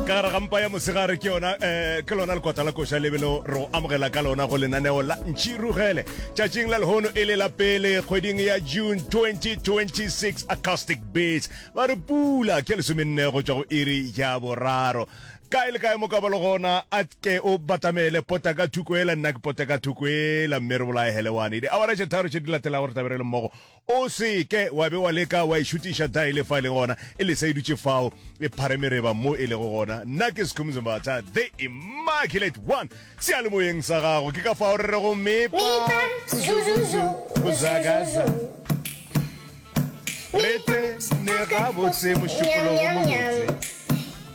ka gare ga mpa ya mosegare ke yona um ke lona lekota la koša lebelo re go amogela ka lona go lenaneo la ntšhi rugele tšatšing la lehono e le la pele kgweding ya june 2026 acoustic beats ba re pula ke lesomenne go tšwa go iri ya boraro kae le kae mo ka balo gona a ke o batamele pota ka thuko ela nna ke pota ka thuko ela mme re bolaegele wane di awara tše tharo tše di latelago re tabere le mmogo O se ke wa be wa leka wa e šutiša dae le fa e le gona e le sa e dutše fao e pharemereba mo e lego gona. Nna ke Skhumzo Mbatha, the Immaculate One. Seyalemoyeng sa gago ke ka fao re rego Mipa, Zuzuzu, Buzagaza. Re tene gabotse mošupologo mobotse.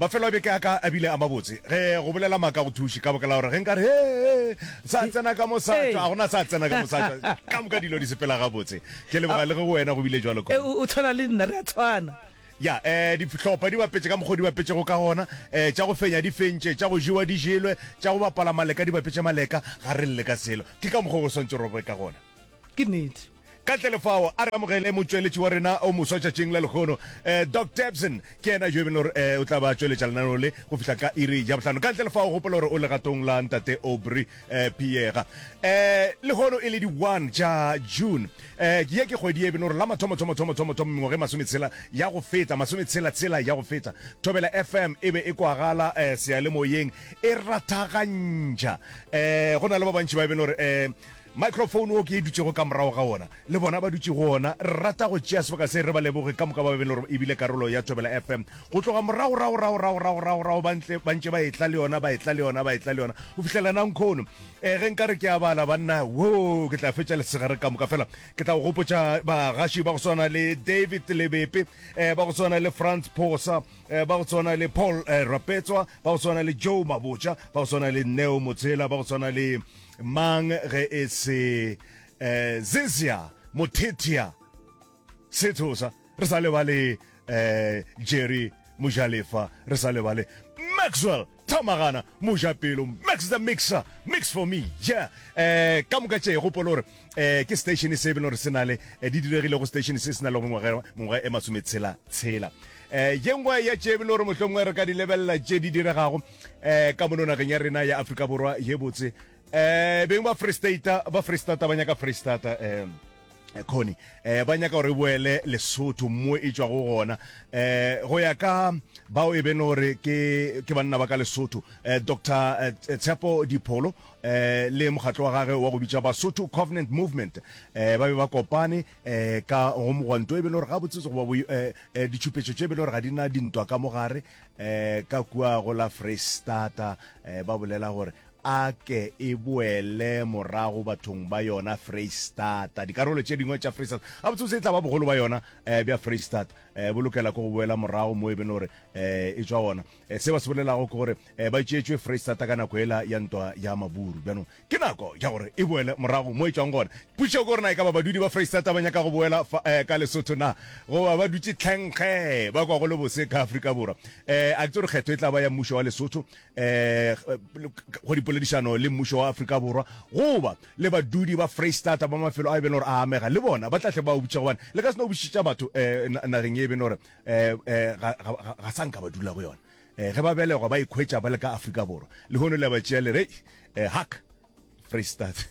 Mafelo a beke a ka a bile a mabotse. Ge go bolela maaka go thuše, ka baka la gore ge nka re, Hee, sa tsena ka mo sa tšwa, ga go na sa tsena ka mo sa tšwa, ka moka dilo di sepela gabotse. Ke leboga le ge go wena go bile bjalo, Connie. O tshwana le nna, re a tshwana. Ya, ee, dihlopa di bapetše ka mokgwa o di bapetšego ka gona, ee, tša go fenya di fentše, tša go jewa di jelwe, tša go bapala maleka di bapetše maleka, ga re lle ka selo. Ke ka mokgwa o go swantšego re boe ka gona. Ke nnete. Ka ntle le fao, a re amogele motšweletši wa rena o moswa tšatšing la lehono, Doc Debson. Ke yena yo e beng le gore o tla ba tšweletša lenaneo le go fihla ka iri ya bohlano. Ka ntle le fao, gopola gore o legatong la Ntate Aubrey Piega. Lehono e le di one tša June. Ye ke kgwedi ye e beng le gore la mathomo-thomo-thomo-thomo-thomo mengwaga e masometshela ya go feta, masometshela-tshela ya go feta, Thobela FM e be e kwagala seyalemoyeng e rathagantšha. Go na le ba bantši ba e beng le gore Microphone wo ke e dutšego ka morago ga wona, le bona ba dutše go wona. Re rata go tšea sebaka se re ba leboge ka moka ba be le gore e bile karolo ya Thobela FM go tloga moragoragoragoragoragoragorago ba ntle ba ntše ba etla le yona, ba etla le yona, ba etla le yona go fihlela nankhono. E, ge nka re ke a bala banna, woo, ke tla fetša lesegare ka moka. Fela ke tla go gopotša bagaši ba go swana le David Lebepe, e, ba go swana le Frans Phosa, e, ba go swana le Paul e, Rapetswa, ba go swana le Joe Mabotja, ba go swana le Neo Motshela, ba go swana le Mang ge e se eh, Zizia Mothethia Sethosa, re sa lebale eh, Jerry Mojalefa, re sa lebale Maxwell Thamagana Mojapelo, Max the Mixer, Mix for me, yeah. Eh, ka moka tše gopolo gore eh, ke station se e bele gore se na le eh, di diregile go station se se na le go mengwaga mengwaga e masometshela tshela eh, ye nngwe ya tše e bele gore mohlomongwe re ka di lebelela tše di diregago eh ka mono nageng ya rena ya Afrika Borwa ye botse eh beng ba Free State ba Free State ba nyaka Free State eh khoni eh ba nyaka gore boele lesotho mo e tswa go gona eh go ya ka bao e beng gore ke ke banna ba ka lesotho eh dr eh, tshepo dipholo eh le mokgatlo wa gage wa go bitsa basotho covenant movement eh ba be ba kopane eh ka go mogwanto e beng gore ga botsetse go ba eh, eh ditšhupetso tše e beng gore ga di na dintwa ka mogare eh, ka kua go la freistata eh, ba bolela gore a ke e boele morago bathong ba yona freistata dikarolo tše dingwe tša freistata a botsebotse e tla ba bogolo ba yona eh, bja freistata eh, bo lokela ko go boela morago mo e bene gore eh, e tswa gona eh, se ba se bolelago ke gore eh, ba tšeetšwe freistata ka nako ela ya ntwa ya maburu bjanong Ke nako ya gore e boele morago mo e tšwang gona. Pušo ke gore na e ka ba badudi ba Freistata ba nyaka go boela fa eh, ka Lesotho na goba ba dutše tlhenkge ba kwa go le bose ka Afrika Borwa. Eh, a ke tsore kgetho e tla ba ya mmušo wa Lesotho eh, go dipoledišano le mmušo wa Afrika Borwa goba le badudi ba Freistata ba mafelo a e bene gore a amega le bona ba tla tle ba obutša gobane le ka se no obušitša batho eh, nageng e bene gore eh, eh, ga, ga, ga, ga sa nka ba dula go yona. Ge ba belegwa ba ikhwetša ba le ka Afrika Borwa, lehono le a ba tšea le re, Hei, haka, Freistata.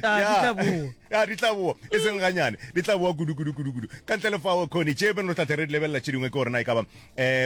Ya, ya, di tla boa, e seng ganyane, di tla boa kudu, kudu, kudu, kudu. Ka ntle le fao, Connie, tše pele re tla tle re di lebelela tše dingwe ke gore na e ka ba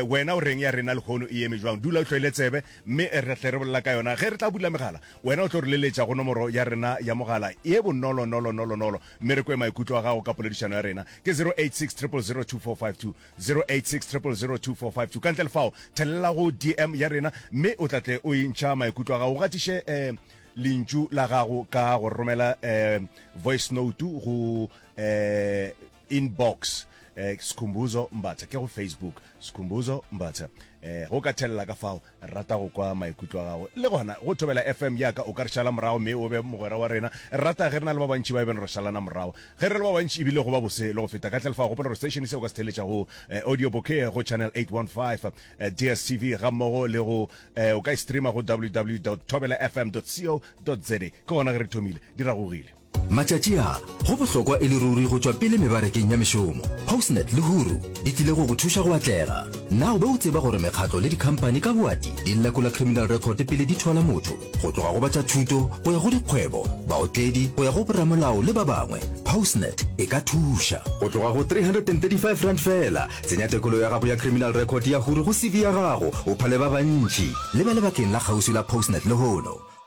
wena o reng ya rena lehono e eme bjang. Dula o hloile tsebe, mme re tla tle re bolela ka yona. Ge re tla bula megala, wena o tlo re leletša go nomoro ya rena ya mogala ye bonolo-nolo-nolo-nolo, mme re kwe maikutlo a gago ka poledišano ya rena. Ke 086 000 2452. 0860002452 ka ntle le fao thelela go dm ya rena mme o tla tle o e ntšha maikutlo a gago o gatiše um lentšu la gago ka go romela um voice note go um inbox um sikhumbuzo mbatha ke go facebook sikhumbuzo mbatha um go ka thelela ka fao Rata go kwa maikutlo a gago. Le gona, go thobela FM ya ka, o ka re šala morago mme o be mogwera wa rena. Re rata ge re na le ba bantši ba e beng re šalana morago. Ge re le ba bantši e bile go ba bose le go feta. Ka tle lefao, gopola gore station se o ka se theeletša go Audio Bouquet go Channel 815, DSTV gammogo le go o ka e streama go www dot thobelafm dot co dot za. Ke gona ge re thomile. Di ragogile. Matšatši a, go bohlokwa e le ruri go tšwa pele mebarekeng ya mešomo. Postnet le Huru di tlile go go thuša go atlega. Na o be o tseba gore mekgatlo le dikhampani ka boati di lekola criminal record pele di thwala motho? Go tloga go ba tša thuto, go ya go dikgwebo, baotledi, go ya go boramolao le ba bangwe, Postnet e ka thuša. Go tloga go R335 feela, tsenya tekolo ya gago ya criminal record ya Huru go CV ya gago, o phale ba bantši. Le ba lebakeng la kgauswi la Postnet lehono.